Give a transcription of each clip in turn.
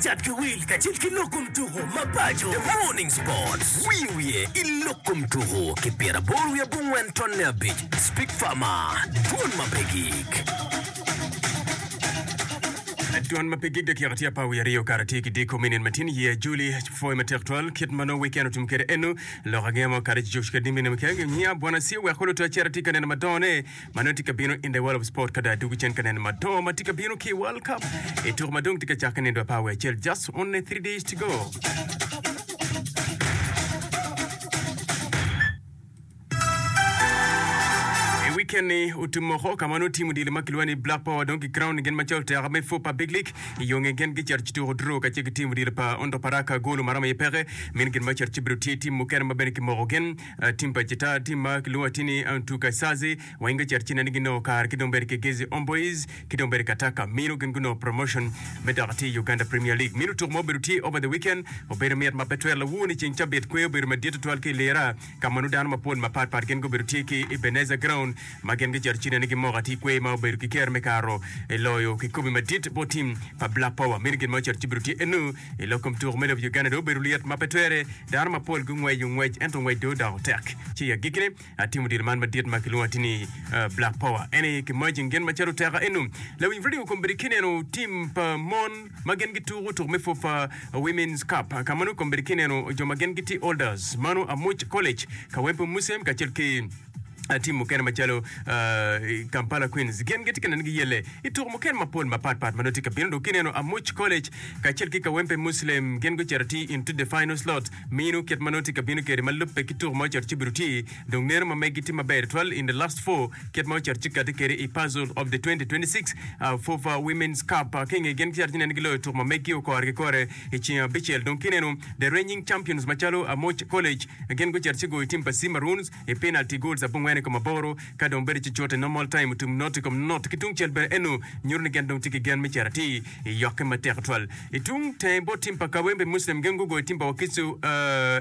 Cat ki wil kacel ki lok kom tuku mapaco. The Morning Sports, Wiyo wiye i lok kom tuku ki pyera aboro wiye abongwen tonne abic, Speak Farmer, Dwon ma pe gig. Dwon ma pe gig dakika tye apar wiye aryo kare tye ki diko minin matin year Juli pwoyo matek twal kit ma nongo weekend otum kwede eno lok angeya ma okato ci Josh Kadimbi neme kek niya bwana Sia weko luto aceta tye ka neno madongo ne ma nongo tye ka bino in the world of sport ka dong adwogo cen ka neno madongo ma tye ka bino ki i World Cup i tuko ma dong tye ka cakke nindo apar wiye acel just only 3 days to go. I weekend ni otum moko ka ma nongo tim odilo ma kilwongo ni Black Power dong ki crown gin macalo oteka me four pa Big League i yo ngeye gin gicito ci tuko draw kacel ki tim odilo pa Ondo Paraka golo maromo iye peke min gin macito ci bedo tye tim mukene ma bene kimoko gin Timba Cita, tim ma kilwongo atir ni Antu Kaisazi, wa inge cito cine ni ginongo kare ki dong bene ki Gezi Omboiz ki dong bene Kataka Mino gin gunongo promotion me dok atir Uganda Premier League. Mino tuku ma obedo tye over the weekend obedo mit ma pe twero lawur ni ceng cabit kwe obedo madit tutwal ki i Lira ka ma nongo dano mapol mapat pat gin gubedo tye ki Ebenezer Ground ma gin gicito cine ni gimoko atir kwe ma obedo ki kero me karo loyo kikobi madit bot tim pa Black Power. Mino gin ma ocito ci bido tye eno I lok kom tuko me lobo Uganda dong obedo lyet ma pe twere. Dano mapol gungweco ngwec ento ngwec dong odoko tek. Ci i agikkine, atimo diro man madit ma kilwongo ati ni Black Power. En aye kimajing gin macalo teka eno. Lawiny redio kombeddi kineno tim pa mon ma gin gituko tuko me pwop pa Women's Cup. Ka ma nongo kombeddi kineno jo ma gin gitye Olders, mano Amuc College, Kawempe Museum kacel ki I tim mukene macalo i Kampala, Queens, gin gitye ka neno giyelle i tuko mukene mapol mapat pat ma nongo tye ka bino. Dok kineno Amuch College kacel ki Kawempe Muslim gin gucito atir into the final slot. Mino kit ma nongo tye ka bino kwede ma lubbe ki tuko ma ocito ci obedo tye. Dong neno ma megi tye maber tutwal in the last four kit ma ocito ci kati kwede i puzzle of the 2026 FUFA Women's Cup. Ki inge gin gicito ci neno giloyo tuko ma megi okore ki kore i ceng abicel. Dong kineno the reigning champions macalo Amuch College gin gucito ci goyo tim pa Sea Maroons. i penalti goals abongwen i kom aboro, ka dong bedo ci cut i normal time otum not i kom not. Ki tungcel bene eno nyuto ni gin dong tye ki gen me cito atir i yokke matek tutwal. I tung tenge bot tim pa Kawempe Muslim gin gugoyo tim pa Wakiso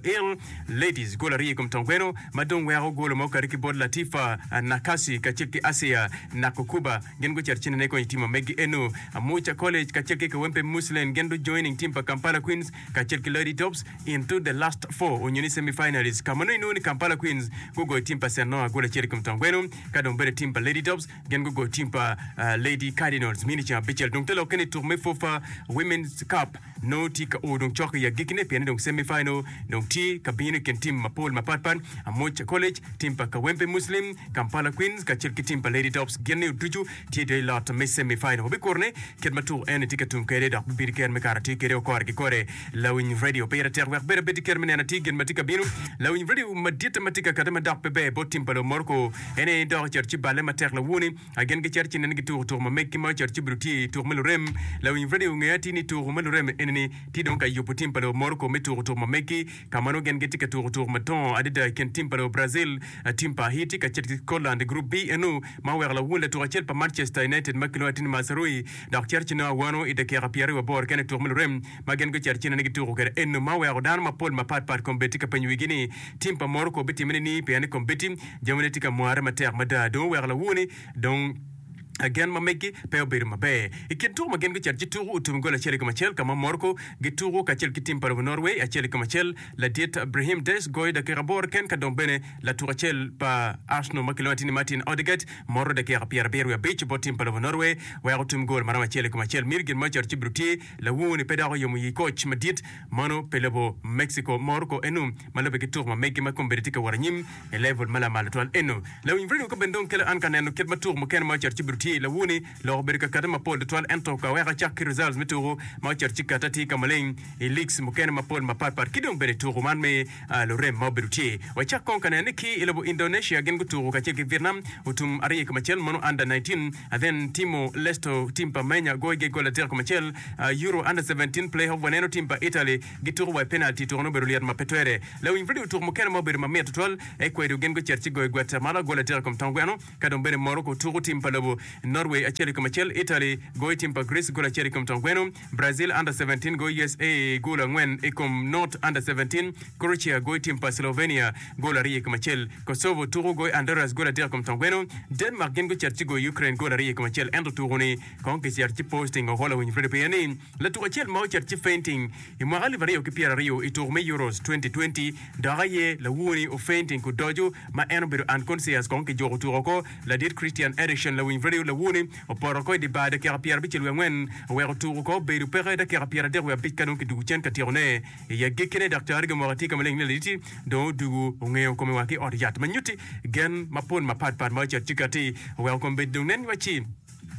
Eagle Ladies gol aryo i kom tong kweno ma dong weko golo ma okati ki bot Latifa Nakasi kacel ki Asia Nakukuba gin gucito cente ne kony i tim ma megi eno Amuca College kacel ki Kawempe Muslim gin du joining tim pa Kampala Queens kacel ki Lloyd Tops into the last four onyo ni semi finalist ka ma nongo inongo ni Kampala Queens gugoyo tim pa St Noah gol acel i kom twon gweno ka dong bene tim pa Lady Tops gin gugoyo tim pa Lady Cardinals mini ceng abicel. Dong te lokke ni tuk me FUFA Women's Cup nongo tye ka o dong cok i agikkine pienni dong semi final dong tye ka bino i kin tim mapol mapat pat, Amoca College, tim pa Kawempe Muslim, Kampala Queens kacel ki tim pa Lady Tops gin ni ducu tye dong i lot me semi final wa bikuru ni kit ma tuku eni tye ka tum kwede dok bibedo kit me kato atir kwede okore ki kore lawiny radio pire tek wek bene abedi kit me neno atir gin ma tye ka bino lawiny radio madite ma tye ka kati ma dok pe ber bot tim pa lobo Morocco en aye dok ocito ci balle matek lawuni a gin gi cito ci neno gi tuku tuku ma megi ma ocito ci bidu tye i tuku me lurem lawiny radio nge atir ni tuku me lurem eni ni tye dong ka yubu tim pa lobo Morocco me tuku tuku ma megi Ka ma nongo gin gitye ka tuko tuko madongo adada i kin tim pa lobo Brazil, tim pa Haiti kacel ki Scotland i Gurup B eno ma oweko lawun latuk acel pa Manchester United ma kilwongo ni Tini Mazraoui dok cito ci nongo awano i dakika pyeraryo wa boro kene i tuko me lurem ma gin gucito ci nene gituko kwede eno ma oweko dano mapol mapat pat kom beti ka penyo wigi ni tim pa Morocco bitime nining pien ni kom beti jamine tye ka mware matek mada dong oweko lawun dong gen ma megi pe obedo maber. I kin tuko ma gin gucito ci tuku otum i goli acel i kom acel ka ma Morocco gituku kacel ki tim pa lobo Norway acel i kom acel. Ladit Brahim Diaz goyo dakika aboro ken ka dong bene latuk acel pa Arsenal ma kilwongo atir ni Martin Odegaard moro dakika pyera abiro wiye abic bot tim pa lobo Norway weko otum gol ma romo acel i kom acel. Myero gin ma ocito ci bido tye lawungu ni pe dok oyomo yi koc madit mano pi lobo Mexico. Morocco enu ma lobe ki tuku ma megi ma kome bene tye ka wot anyim. I level ma lamal tutwal eno, lawiny redio ka bene dong kelo an ka neno kit ma tuku mukene ma ocito ci bido tye i lawuni, lok obedo ka kate mapol tutwal ento ka weko acak ki results me tuku ma ocito ci kate tye ka maleng i leagues mukene mapol mapat pat ki dong bene tuku man me lurem ma obedo tye. Wacak kong ka neno ni ki i lobo Indonesia gin gutuku kacel ki Vietnam otum aryo i kom acel mono under nineteen and then Timor Leste tim pa Menya goyo ge gol adek i kom acel, Euro under seventeen playoff waneno tim pa Italy gituko wa i penalti. Tuko-ni obedo lyet ma pe twere. Lawiny redio tuk mukene ma obedo ma mit tutwal aye kwedo gin gucito ci goyo gwetta ma lagol adek i kom tong gweno. Ka dong bene Morocco tuko tim pa lobo, Norway acel i kom acel, Italy goyo tim pa Greece gol acel i kom tong gweno, Brazil Under Seventeen goyo usa gol angwen i kom not Under Seventeen, Croatia goyo tim pa Slovenia gol aryo i kom acel, Kosovo tuko goyo Honduras gol adek i kom tong gweno, Denmark gin gucito ci goyo Ukraine gol aryo i kom acel ento tuko-ni Kong kicito ci Posting ohollo winy Freddie Pia ni latuk acel ma ocito ci fainting i mwaka alip aryo ki pyera aryo i tuk me Euros 2020 dok aye lawuoni ofainting ku doco ma en obedo unconscious kong ki juko tuko ko ladit Christian Eriksen lawiny Freddie lawuoni opoto ko i di bar dakika pyera abicel wiye angwen oweko tuko ko obedo peke dakika pyera adek wiye abic ka dong kidugu cen ka tyeko ne i agikki ne daktari gi omoko atir ka maleng ni laditi dong odugu ongeyo kome wa ki ot yat ma nyuti gen mapol mapat pat ma ocito ci kati oweko kome bedi dong nen wa ci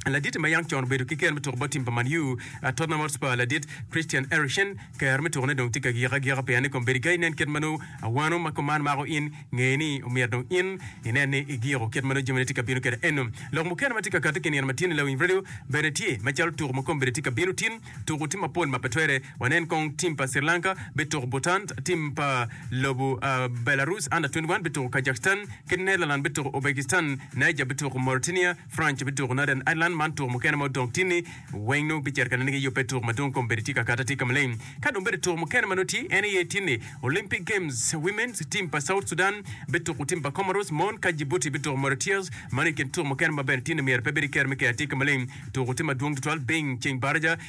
Ladit ma yam con obedo ki ker me tuko bot tim pa Man U, Tottenham Hotspur, ladit Christian Eriksen, ker me tukone dong tye ka gik agika pien ni kombeddi ka inen kit ma nongo awano ma kom man mako in, ngeye ni omyero dong in inen ni igiko kit ma nongo jamine tye ka bino kwede eno. Lok mukene ma tye ka kati ki nino ma tyen-ni lawiny redio bene tye, macalo tuko ma kombeddi tye ka bino tin, tuko tim mapol ma pe twere. Wanen kong tim pa Sri Lanka bituko Bhutan, tim pa lobo Belarus, Under-21, bituko Kazakhstan, kit Netherlands bituko Uzbekistan, Niger bituko Mauritania, Franc me tuko Northern Ireland man tuko mukene ma odong tye ni weng nongo giceto ka nene gi yubbe tuko madwong kombeddi tye ka kata tye ka maleng ka dong bene tuko mukene ma nongo tye en aye tye ni Olympic games women's team pa South Sudan bituko team pa Comoros mon ka Djibouti bituko Mauritius mano ikin tuko mukene ma bene tye ni myero pe bed i kero me kea tye ka maleng tuko tye madwong tutwal bing ceng baraja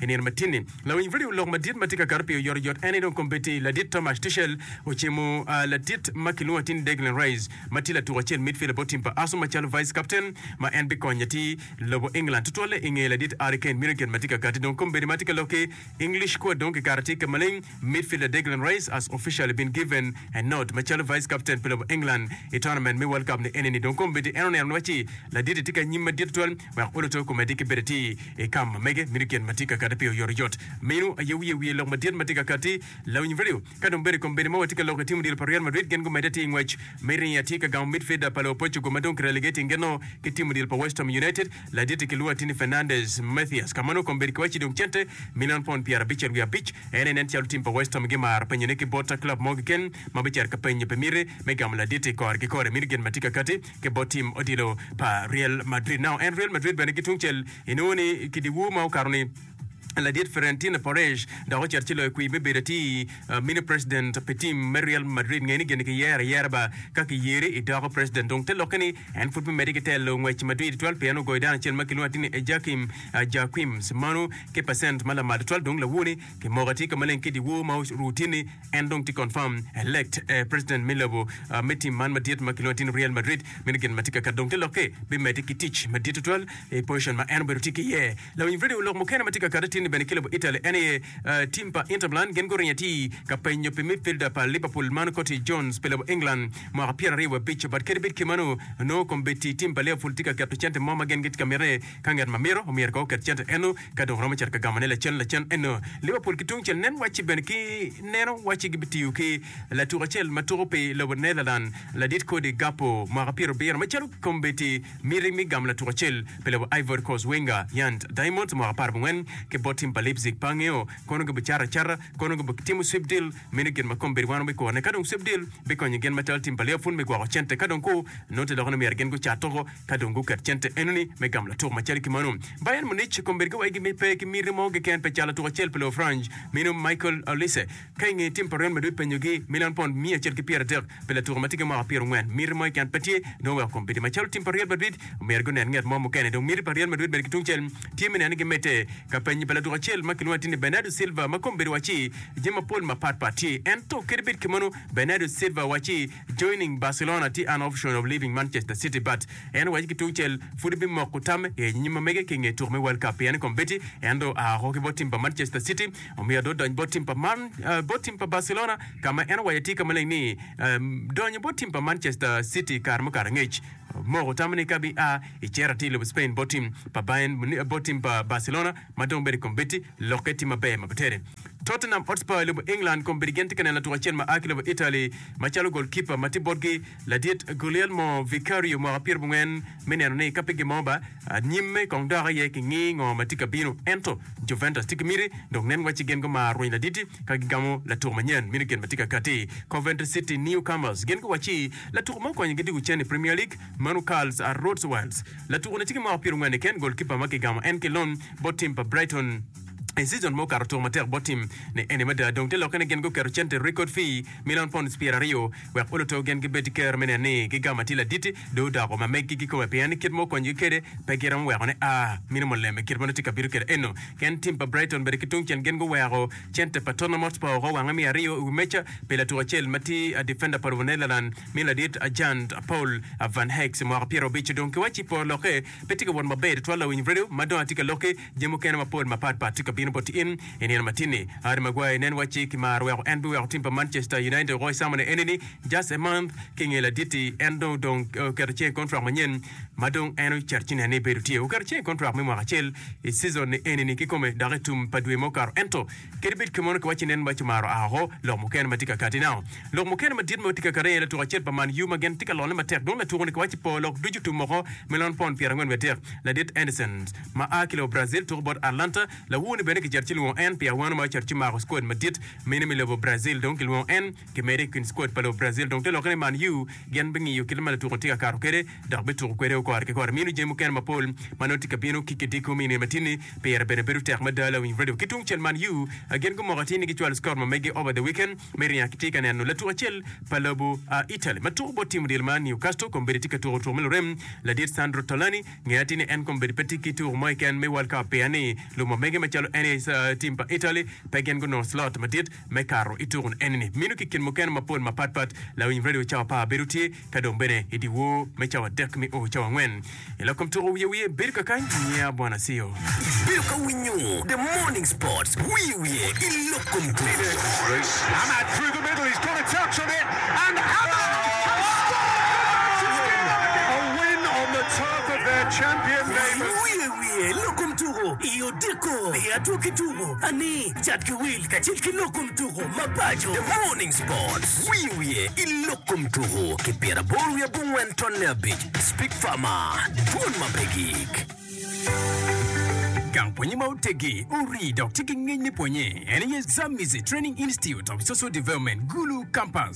I nino matini, lawiny redio lok madit ma tye ka kato pi oyotoyot ene dong kombeddi ladit Tomasz Tuchel ocimo ladit ma kilwongo atir-ni Declan Rice ma tye latuk acel midfielder bot tim pa Arsenal macalo vice captain ma en bikonyo atir lobo England tutwalle i nge ladit Harry Kane meno kit ma tye ka katti dong kombeddi ma tye ka lok ki English squad dong kikato atir ka maleng Midfielder Declan Rice has officially been given a nod macalo Vice Captain pi lobo England i tournament me World Cup ni enini dong kombeddi en oneno ni wacci laditi tye ki anyim madit tutwal wek oloto komeddi ki bedo atir i kam ma mege mito gin ma tye ka kati pi oyotoyot. Meno aye wiye wiye lok madit ma tye ka kati lawiny value ka dong bedo kombeddi ma watye ka loko i tim odilo pa Real Madrid gin gumedde atir i ngwec me ringo atye ka gamo midfielder pa luopocugo ma dong ki relegating geno ki tim odilo pa West Ham United Laditti ki lwatti ni Fernandez, Mathias, ka mano kong bed ki wacci dong cente milion pond pyera abicer wiye abic. En aye nen calo tim pa West Ham gimaro penyone ki bot club mo keken ma bicito ka penyo pi miti me gamo laditti kore ki kore. Miti gin ma tye ka kati ki bot tim odilo pa Real Madrid. Now en Real Madrid bene ki tungcel inongo ni ki diwu ma okato ni. Ladit Fiorentino Perez dok ocito ci loyo kwir me bedo atir uh, mini president pi tim me Real Madrid. Ngeni geni kiyero ayera ba ka kiyeri idoko president. Dong te lokke ni en pud bimedde ki telo ngwec madwir tutwal pien ogoyo dano acel ma kilwongo atir ni Ejakim uh, Jaquims. Manu ki pacent ma lamal tutwal dong lawoni kimoko atir ka maleng ki dyewor ma oru tye ni en dong tye confirm elect eh, president me lobo uh, me tim man madit ma kilwongo atir ni Real Madrid. Meno gin ma tye ka kato dong te lokke bimedde ki tic madit tutwal I pocen ma en obedo tye ki iye, lawiny redio lok mukene ma tye ka kati tinni bene ki lobo Italy en aye tim pa Inter Milan gin guringo atir ka penyo pi midfielder pa Liverpool man Curtis Jones pi lobo England mwaka pyera aryo wa bico but kadi bed ki mano nongo kombeddi tim pa Liverpool tye ka keto cente mo ma gin gitye ka mite ka nget ma mito omyero kono oket cente eno ka dong romo cito ka gamone lacen lacen eno Liverpool ki tungcel nen wacci bene ki neno wacci gibitiyo ki latuk acel ma tuko pi lobo Netherland ladit kodi Gakpo mwaka pyerabiro macalo kombeddi Miti mi gamo latuk acel pi lobo Ivory Coast Wenger Yand Diamonds mwaka apar abongwen ki bot tim pa Leipzig pa angeo kono gi bicato acata kono gi bitimo sweep deal meno gin ma kombedi wano bi kone kadong sweep deal bikonyo gin macalo tim pa Liverpool me gwoko cente kadong ku nongo te lokone myero gin gucat toko kadong guket cente enoni me gamo latuk macalo ki mano Bayern Munich kombedi giwaigi mi pe ki miti mo keken pe cato latuk acel pi lobo Franj meno Michael Olise. Ka i nge tim pa Real Madrid penyo gi milion pond miya acel ki pyera adek pi latuko ma tye ki mwaka pyera ongwen, miti mo i can pe tye, nongo weko kombeddi ma calo tim pa Real Madrid omyero gi onen nget mo mukene. Dong miti pa Real Madrid bene ki tung cel tye me neno ni gi medde ka penyi pa latuko acel ma kilwongo atir ni Bernardo Silva ma kombeddi waci jami ma pol ma pat pat tye ento kadi bed kemeno Bernardo Silva waci joining Barcelona tye an option of leaving Manchester City but en waci ki tung cel pud en bi moko tam i anyim ma mege ki i nge tuko me World Cup pien kombeddi en dong oa oko ki bot tim pa Manchester City Omiyo adot dony bot tim pa man, eh, bot tim pa Barcelona, ka ma en owaco tye ka maleng ni, eh, donyo bot tim pa Manchester City kare mukato angec. Moko tamo ni ka bia i cere atir i lobo Spain bot tim pa Bayern Munich, eh, bot tim pa Barcelona ma dong bedo i kom Betti, lokke tye maber ma pe tere. Tottenham Hotspur i lobo England kong bedo gin tye ka neno latuk acel ma a ki lobo Italy macalo gol kipa ma tye botgi, ladit Guglielmo Vicario mwaka pyerabongwen, me neno ni ka pe gin mo ba nyimme kong dok aye ki ngi ngo ma tye ka bino. Ento Juventus tye ki miti dok nen wacci gin gumaro rweny laditi ka gigamo latuk manyen meno gin ma tye ka katti. Coventry City Newcomers gin guwacci latuk ma okonyogi diko cen i Premier League, Manu Karls a Rhodes Wales. Latuku-ni tye ki mwaka pyerongwen i ken, gol kipa ma kigamo en ki lon bot tim pa Brighton i season ma okato otuko matek bot tim ni eni mada dong te lokke ni gin guketo cente record fee milion pounds pyeraryo wek oluto gin gibed ki kero me neno ni gigamo atir laditi dong odoko ma megi ki kome pien ni kit ma okonyogi kwede pe giromo weko ni a mini mulem i kit ma nongo tye ka bino kwede eno. Ken tim pa Brighton bene ki tungcel gin guweko center pa Tottenham Hotspur woko wange me aryo i wi meja pi latuk acel ma tye a defender pa lobo Netherland mi ladit Jan Paul Van Heyks mwaka pyerabic dong ki waci po lokke pe tye ka wot maber tutwal lawiny redio ma dong atye ka loki Jami mukene mapol mapat pat tye ka bino boti in i nino matin-ni. Harry Maguire nen wacci ki mar weko en biweko tim pa Manchester United oko i samone enini, just a month ki nge laditi en dong odong oketo cinge i kontrak manyen ma dong en ocito ci nen ni bedo tye oketo cinge i kontrak me mwaka acel i season-ni enini kikome dok i tum pa dwe ma okato ento Kadi bed kemon kiwacci nen maco maro aa oko, lok mukene ma tye ka kati nao. Lok mukene madit ma tye ka kati aye latuk acel pa Man U ma gin tye ka lone matek dong latuku ni kiwacci po lok ducu tum oko me lon pound pyera angwen wiye adek. Ladit Anderson ma aa ki lobo Brazil tuku bot Atlanta, lawur ni bene kicito ci lwongo en pi awano ma ocito ci mako squad madit mene me lobo Brazil dong kilwongo en Ki medo i kin squad pa lobo Brazil dong te lokke ni Man U gin bingiyo kit ma latuko tye ka kato kwede dok bituko kwede o kore ki kore. Mino jami mukene mapol ma nongo tye ka bino ki kidiki omiyo nino matini pire bene bedo tek mada. Lawiny radio ki tungcel Man U gin gumoko atir ni gicwalo squad ma mege over the weekend me ringo ki tye ka neno latuk acel pa lobo Italy ma tuko bot tim odilo ma Newcastle kong bedi tye ka tuko tuko me lurem ladit Sandro Tolani nge atir ni en kong bedi pe tye ki tuko mo keken me World Cup pien ni lumo mege macalo NA tim pa Italy pe gin gunongo slot madit me kato i tukun eni-ni mino ki kin mukene mapol mapat pat. Lawiny redio cawa par bedo tye ka dong bene i dyewor me cawa adek mi o cawa angwen. I lok kom tuko wiye wiye bedo kakany niya bwana Asio. Ibedo ka winyo The Morning Sports wiye wiye i lok kom tuko. Cat ki wil kacel ki lok kom tuko mapaco. The Morning Sports, Wiyo wiye i lok kom tuko ki pyera aboro wiye abongwen tonne abic, Speak Farmer, Dwol ma pe gik. Gang pwonye ma oteggi, orii dok tye ki ngec me pwonye en aye Zamizi Training Institute of Social Development, Gulu Campus.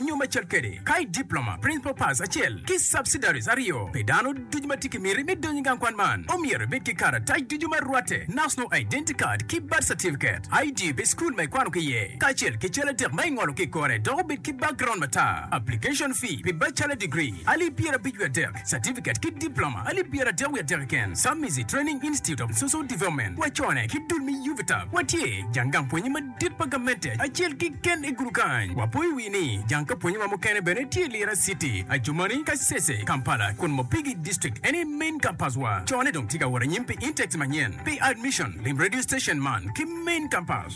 Nyo me cal kede, ka i diploma, principal pass acel ki subsidiaries aryo pi dano ducu ma tye ki miti me donyo i gang kwan man, omyero ibed ki karatac ducu ma rwatte, National Identity Card ki Birth Certificate, ID pi school ma ikwano ki iye, kacel ki cal adek ma ingolo ki i kore dok obed ki background matar. Application fee pi bachelor degree, alip pyerabic wiye adek. Certificate ki Diploma alip pyeratek wiye atek keken, Submizi Training Institute of Social Development, wacone ki dul me UVTAB. Watye jang gang pwonye madit pa gamente acel keken i gudu kany. Wapoyo wi ni jang ka pwonyewa mukene bene tye Lira City, Adjumani, Kasese, Kampala, kun Mopigi District en aye main campus wa. Cone dong tye ka wot anyim pi intakes manyen. Pi admission, lim radio station man ki main campus.